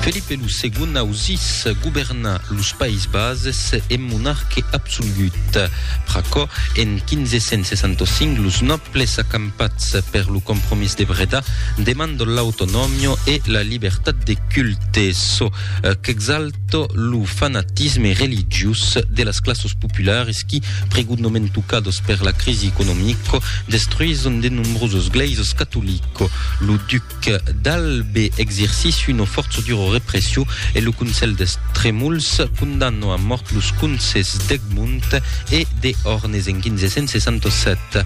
Felipe lo Segon ausís governar los Païses Bases en monarque absolgut. Pr'aquò, en 1565, los nòbles acampats per lo Compromís de Breda demandon l'autonòmia e la libertat de culte, çò qu'exalta tot lo fanatisme religiós de las classes populares qui, pregunhament tocados per la crisi economica, destruison de nombroses glèises catolica. Lo duc d'Albe exercici una fòrça dura repression e lo Consell dels Tremols condamna a mòrt los conces d'Egmont e de Hornes en 1567.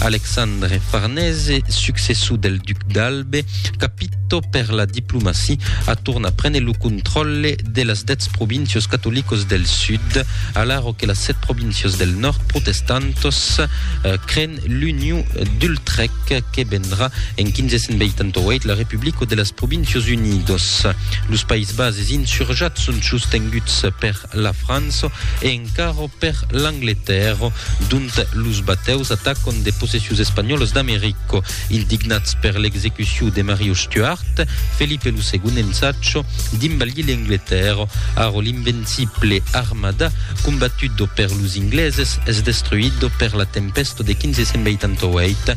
Alexandre Farnese, successor del duc d'Albe, capito per la diplomacia, a tornar prene lo contròlle de las dètz províncios catolicos del sud, alaro que las sèt províncios del nòrd protestantos creen l'Union d'Utrech que vendrà en 1588 la Republico de las Províncios Unidos. Los Païs Bases insurjats son sostenguts per la França e encara per l'Angletèrra, dont los batèus atacon de possessius espanhòlas d'America. Ildignats per l'execuciu de Mario Stuart, Felipe lo Segond ensacha d'imbalhir l'Angletèrra. Ara l'invencible armada, combatuda per los Ingleses, es destruida per la tempèsta de 1588.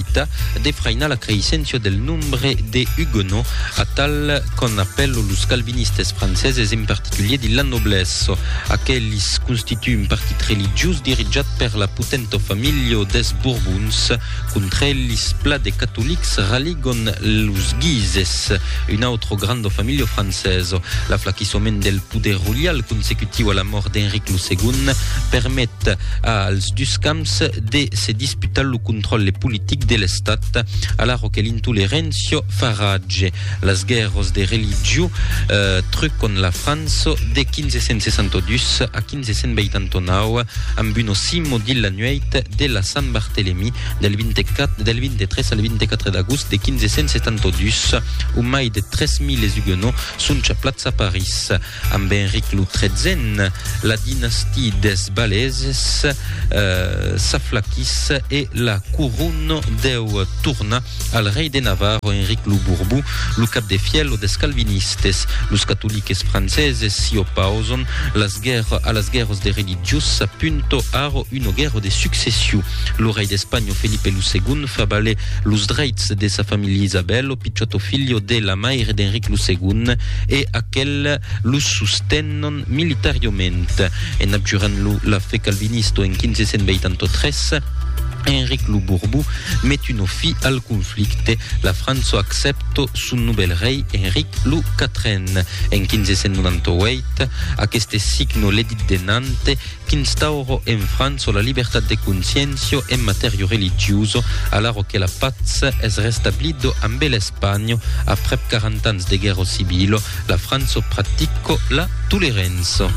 Tà de frainar la creisséncia del nombre de Huguenots, atal qu'an apèlo los calvinistes franceses, en particulier de la noblesse. Aquelis constitue un partit religiós dirijat per la potenta familha des Borbons. Contra elis, pla de catolics raligon los Guises, una autra granda familha francesa. L'aflaquissement del poder roial consecutiu a la mòrt d'Enric lo Segond permet als dus camps de se disputar Putal lo contròlle politic de l'Estat, alara que l'intoleréncia fa ratge. Las guèrras de religió trucon la França de 1562 a 1589 amb un ocimo dins la nuèit de la Sant Bartelemí del 24 del 23 al 24 d'agost de 1572 ont mai de 3.000 huguenots son chaplats a París. Amb Enric lo Tretzen, la dinastie des Baleses s'aflaquís e la courona deu tornar al rei de Navarra, Enric lo Borbon, lo cap de fièlho des calvinistes. Los catoliques franceses s'i opauson a las guèrras de religiós, s'apunta ara una guèrra de succession. Lo rei d'Espanha Felipe lo Segond Filip fa valer los dreits de sa familha Isabel, lo pichòt o filho de la maire d'Enric lo Segond, e aquel los sostenon militariament. En abjurant lo la fe calvinista en 1583, Enric lo Borbó met una fi al conflicte, la França accèpta son novèl rei Enric lo Quatren. En 1598, aqueste signa l'Edit de Nantes, Qu'instauro en França la libertat de consciéncia en matèria religiosa, alaro que la patz es restablida ambe l'Espanha aprèp 40 ans de guèrra civila, la França practica la tolerança.